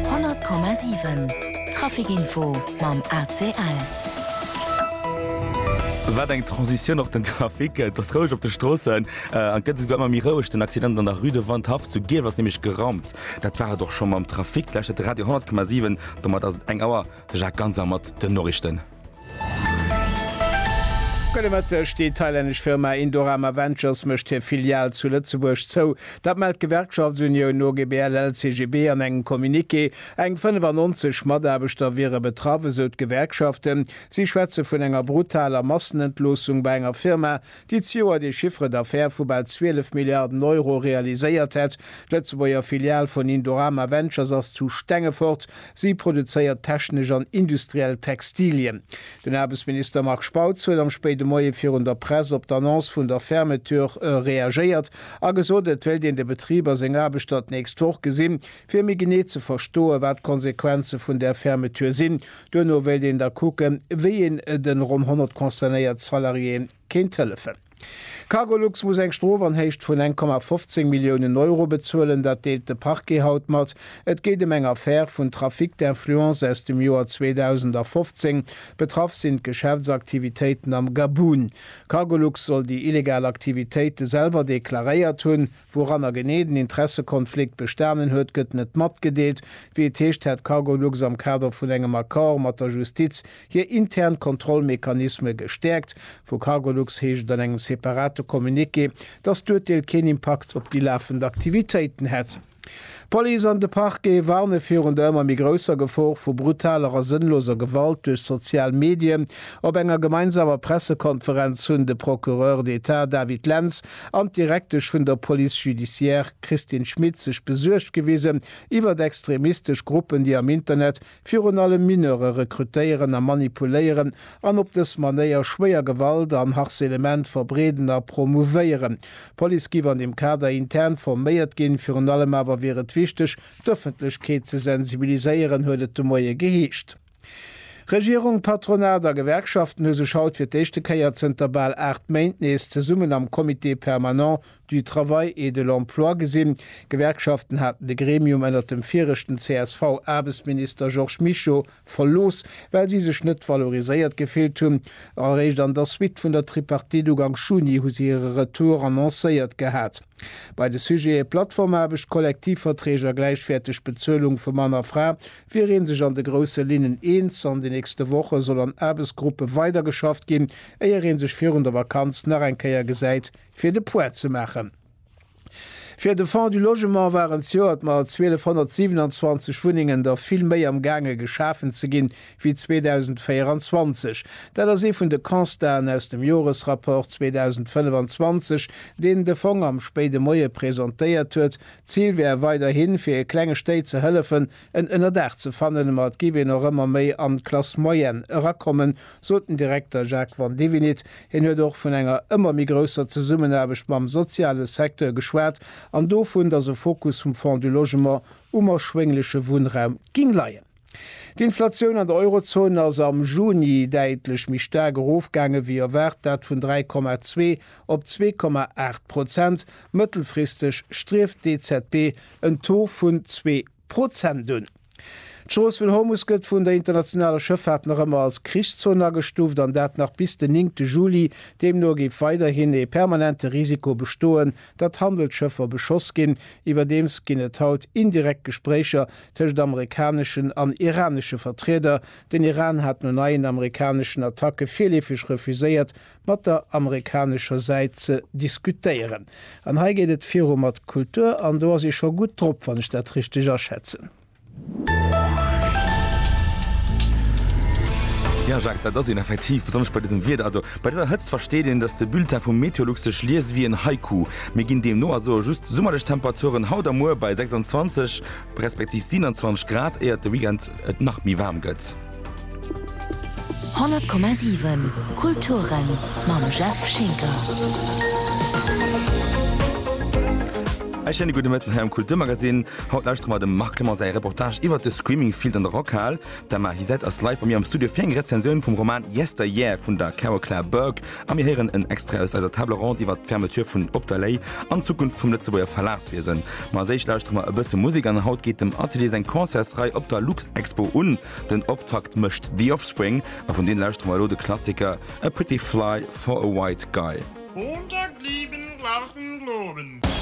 100,7 Trafic info mam ACL. Wat eng Transitioun op den Trafic. Et ass roueg op de Stroossen an et gëtt esouguer ëmmer méi roueg. Den Accident an der Rue de Wandhaff zu Gierf ass nämlech geraumt. Dat war et och schonn mam Trafic. D'lescht huet de Radio 100,7. Domat ass et eng Auer. De Jacques Ganser mat den Noriichten. Gudde Mëtteg, Déi thailännesch Firma Indorama Ventures mécht hir Filial zu Lëtzebuerg zou. Dat mellt d'Gewerkschaftsunioun no GBL-LCGB an engem Communiqué. Eng 95 Mataarbechter wiere betraff, esou d'Gewerkschaften. Si schwätze vun enger brutaler Massenentloossung bei enger Firma, déi d'Joer de Chiffre d'affaires vu bal 12 Milliarden Euro realiséiert hätt. D'Lëtzebuerger Filial vun Indorama Ventures ass zu Stengefort. Si produzéiert technesch an industriell Textilien. Den Aarbechtsminister Marc Spautz huet am spéide Moie virun der Press op d'Annonce vun der Fermeture reagéiert a gesot, et wéilt een de Betrib a seng Aarbechter d'nächst Woch gesinn, fir méi genee ze verstoen, wat d'Konsequenze vun där Fermeture sinn. Duerno wéilt een da kucken, wéi een de ronn 100 concernéiert Salariéeë kéint hëllefen. Cargolux muss eng Strof an Héicht vun eng Komma 15 Milliounen Euro bezuelen. Dat deelt de Parquet haut mat. Et geet ëm eng Affär vun Trafic d'influence aus dem Joer 2015. Betraff sinn d'Geschäftsaktivitéiten am Gabun. Cargolux soll déi illegal Aktivitéite selwer deklaréiert hunn. Wouranner genee den Interessekonflikt bestanen huet, gëtt net matgedeelt. Wéi et heescht, hätt Cargolux am Kader vun engem Accord mat der Justiz hir intern Kontrollmechanisme gestäerkt. Vu Cargolux heescht et an engem separate Communiqué, dass d'Urteel keen Impakt op déi lafend Aktivitéiten hätt. D'Police an de Parquet warne virun der ëmmer méi grousser Gefor vu brutaler a sënnloser Gewalt duerch sozial Medien. Op enger gemeinsamer Pressekonferenz hunn de Procureur d'Etat David Lentz an d'Direktesch vun der Police judiciaire Christine Schmit sech besuergt gewisen iwwert extremistesch Gruppen, déi am Internet virun allem Mineure rekrutéieren a manipuléieren an op dës Manéier schwéier Gewalt an Harcelement verbreeden a promouvéieren. D'Police giff an deem Kader intern forméiert ginn. Virun allem awer wier et wichteg, d'Ëffentlechkeet ze sensibiliséieren, huet et de Moie geheescht. Regierung, Patronat a Gewerkschaften hu sech haut fir d'éischte Kéier zënter bal 8 Méint nees zesummen am Comité permanent du Travail et de l'Emploi gesinn. D'Gewerkschaften haten de Gremium ënnert dem viregten CSV-Aarbechtsminister Georges Mischo verlooss, well si sech net valoriséiert gefillt hunn. Eréischt an der Suite vun der Tripartite ugank Juni hu se hire Retour annoncéiert gehat. Bei de Sujete Plattformaarbecht, Kollektivverträg a gläichwäerteg Bezuelung vu Mann a Fra wier ee sech an de grousse Linnen eens. An de nächste Woche soll an Aarbechtsgruppe weidergeschafft ginn, éier ee sech virun der Vakanz nach eng Kéier gesäit, fir de Poids ze maachen. Fir de Fonds du Logement waren zejoert mat 1227 Wunnengen der vill méi am gaange geschafen ze ginn, wéi 2024. Dat ass ee vun de Constaten aus dem Joresrapport 2025, deen de Fong am spéide Moie presentéiert huet. D'Zil wär weiderhi fir klenge Stéit ze hëllefen, En Ënnerdaach ze fannen, ma et géif een och ëmmer méi an d'Classe moyenne erakommen, sot den Direkter Jacques Vandevenit. Hien huet och vun enger ëmmer méi grousser Zesummenaarbecht mam soziale Secteur geschwat an dovun, datt e Fokus vum Fonds du Logement um erschwéngleche Wunnraum géing leien. D'Inflatioun an der Eurozon ass am Juni däitlech méi staark erofgaange wéi erwaart, dat vun 3,2 op 2,8 Prozent. Mëttelfristeg strieft d'EZB en Taux vun zwee. Prozent un. D'Strooss vun Hormus gëtt vun der internationaler Schëffaart nach ëmmer als Krichszon agestuuft, an dat nach bis den néngte Juli. Deemno géif weiderhin ee permanente Risiko bestoen, datt Handelsschëffer beschoss ginn. Iwwerdeems ginn et haut indirekt Gespréicher tëscht amerikaneschen an iranesche Vertrieder. Den Iran hat no neien amerikaneschen Attacke virleefeg refuséiert, mat der amerikanescher Säit ze diskutéieren. An hei geet et viru mat Kultur, an do ass ee scho gutt drop, wann ech dat richteg aschätzen. Jo, Jacques, dat ass een effektiv, besonnesch bei dësem Wieder. Also, bei dëser Hëtzt versteet een, datt de Bulletin vu Meteolux sech liest wéi en Haiku. Mir ginn deemno also just summerlech Temperaturen haut a muer bei 26 respektiv 27 Grad, éiert de Weekend et nach méi waarm gëtt. 100,7 Kulturen mam Jeff Schinker. E schéine gudde Mëtten hei am Kulturmagazin. Haut lauschtere mer dem Marc Clement säi Reportage iwwert de Screaming Field an der Rockhal. D'Emma Hysette ass live bei mir am Studio fir eng Rezensioun vum Roman Yesteryear vun der Carol Claire Burke. A mir héieren en Extrait aus eiser Table ronde iwwert d'Fermeture vun Op der Lay an d'Zukunft vum Lëtzebuerger Verlagswiesen. Ma als éischt lauschtere mer e bësse Musek an haut geet dem Atelier seng Concertsrei op der Luxexpo un. Den Optakt mécht The Offspring a vun deene lauschtere mer elo de Klassiker A Pretty Fly for a White Guy. Unter Glieden lauten Globen.